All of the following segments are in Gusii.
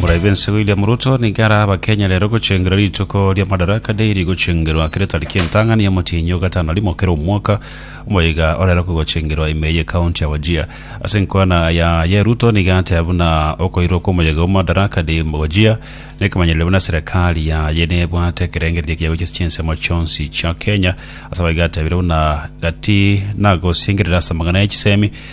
Murayi bense William Ruto nigo ara abakenya rero gochengera rituko ria Madaraka Day rigochengerwa akere tariki entang'ani ya Motienyo gatano rimo kera omwaka omoiga orero kogochengerwa ime ye county ya Wajir ase enkwana ya ye Ruto nigo ateba buna okoirwa kw'omoyega o Madaraka Day mu Wajir nekemanyereria buna serikali yaye nebwate ekerengererio gia gochia chinsemo chionsi chia Kenya ase abaigo atebire buna gati nagosingerera ase amang'ana ya chisemi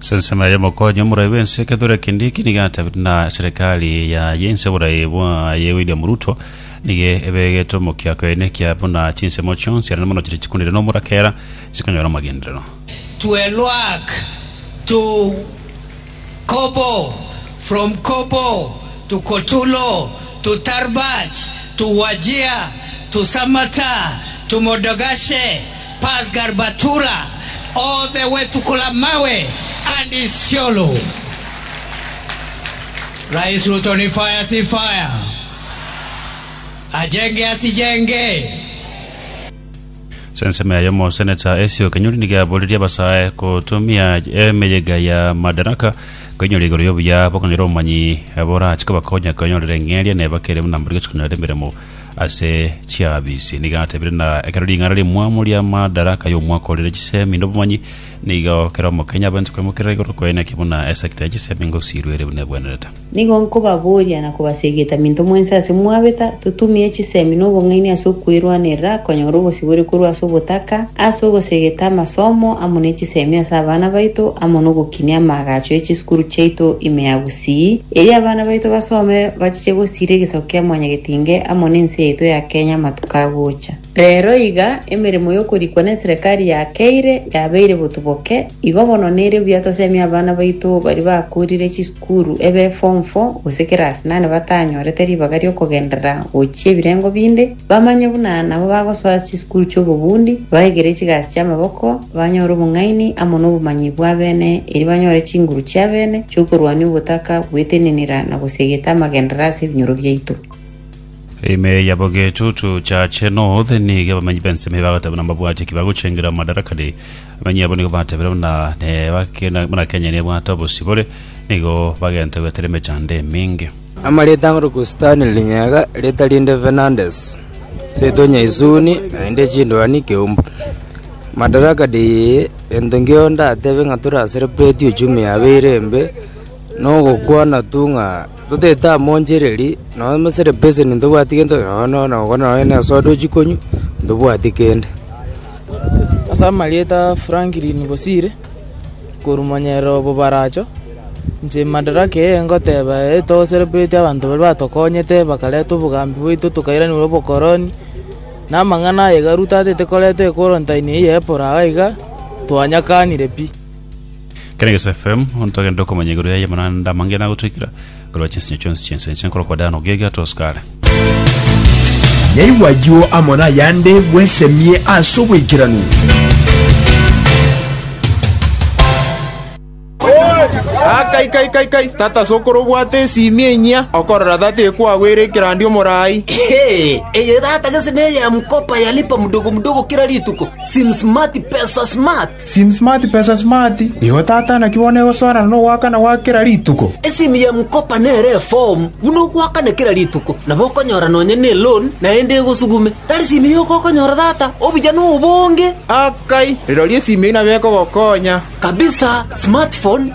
Sensemo yaye Omokonyi Omoraai bw'ense ekethorwa kende eki nigo atabete na serikali yaye ense oboraai bwaye William Ruto nigo ebegete omokia kwene kia buna chinsemo chionsi arende mono chiria chikunire nomorakera chikonyora amagenderero. Twelwak to Kobo, from Kobo to Kotulo, to Tarbaj, to Wajir, to Samata, to Modogashe, Pasgar Batura, Othe Wetukula Mawe, and Isiolo. Rais Ruto ni fire si fire. Ajenge asi jenge. Ase ensemo yaye omoseneta Esio Kenyori nigo aboririe abasae gotumia emeyega ya Madaraka koinyoria igoro y'obuya bokonyora obomanyi borache kobakonya kwenyorera eng'eria nebakere buna mbori gochia konyora emeremo Ase chiabisie nigo atebire, na ekero ring'ana rimwamo ri'amadaraka y'omwaka o rire chisemi n'obomanyi, nigo kera omokenya abwenerete kwemokerera igoro kwaye, naki buna esegita ya chisemi ngosirwa ere buna ebwenerete. Nigo nkobaboria na kobasegeta minto mwensi ase mwabeta, totumie chisemi na obong'aini ase okwerwanerera konyora obosibore korwa ase obotaka, ase ogosegeta amasomo amo ne chisemi ase abana baito, amo nogokinia amaagacho e chisukuru chiaito ime ya gusii. C, Erio abana baito basome bachiche gosiira egesaku kia Mwanyagetinge amo nense yaito ya Kenya amatuko agocha. Rero iga emeremo yokorikwa neserekari ya Keire yabeire botuboke, igo bono nere buya tosemie abana baito baria bakoorire chisukuru ebe form four gose kerasi nane batanyorete ribaga riokogenderera gochia ebirengo binde, Bamanye buna nabo bagosoa chisukuru chi'obobundi, baigere chigasi chi'amaboko, banyore obong'aini amo nobomanyi bw'abene, erio banyore chinguru chi'abene chi'okorwania ogotaka gwetenenera na gosiegeta amagenderero ase ebinyoro biaito. Ime yabo getutu Church North nigo abamenyi b'ensemo eye bagoteeba buna mbabwati ki bagochengera Madarakani. Abamenyi abo nigo bateebire buna ne bake- buna Kenya nebwate obosibore, nigo bagenta goetera emechando eminge. Amarieta ang'e Rukustani rinyega, rieta rinde Fernandes, Seitonia Isuni, naende chindwani keumbu. Madaraka deye, gento nkio ndatebe ng'a tore asere preti uchumi yabeire embe, nogokwana tu ng'a totaete amo nchereri, nonya mesere peseni ntobwati gento, nonya nogokwana nonya nesoda ochia konywa, ntobwati kende. Ase amarieta Franklin Bosire. korumanyerera obobaracho, inche madaraka eye ngoteba ere etogosere bweete abanto baria batokonyete, bakareta obogambi bwaito tokairaneria obokoroni, na amang'ana aye Garu tatete koreta ekworontaini eye y'eporo aye iga, twanyakanire pi. Ekeregeso FM, ontogende okomanya igoro yaye, mana naende amange nagotoikera. Korwa chinsinyo chionsi chi'ense inche nkore okodaana ogiagia atosu kare. Naigwe ayio amo nayande bwesemie ase oboikeranu. Ah, kai kai kai kai tata sokoro obwate esimi enyia okorora tata ekwagwera ekerandi omorai Hey, eye tata gese neye ya mkopa ya lipa mdogo mdogo kila rituko sim smart pesa smart Sim smart pesa smart, igo tata naki bono egosoana nogoakana gwa kera rituko. Esimu ya M-Kopa nere efomu buna ogoakana kera rituko, nabo okonyora nonya neloan naende egosugume. Tari simu eye ogokonyora tata, obuya nobonge. Akai, rirorio esimu eye nabo ekogokonya. Kabisa Smartphone.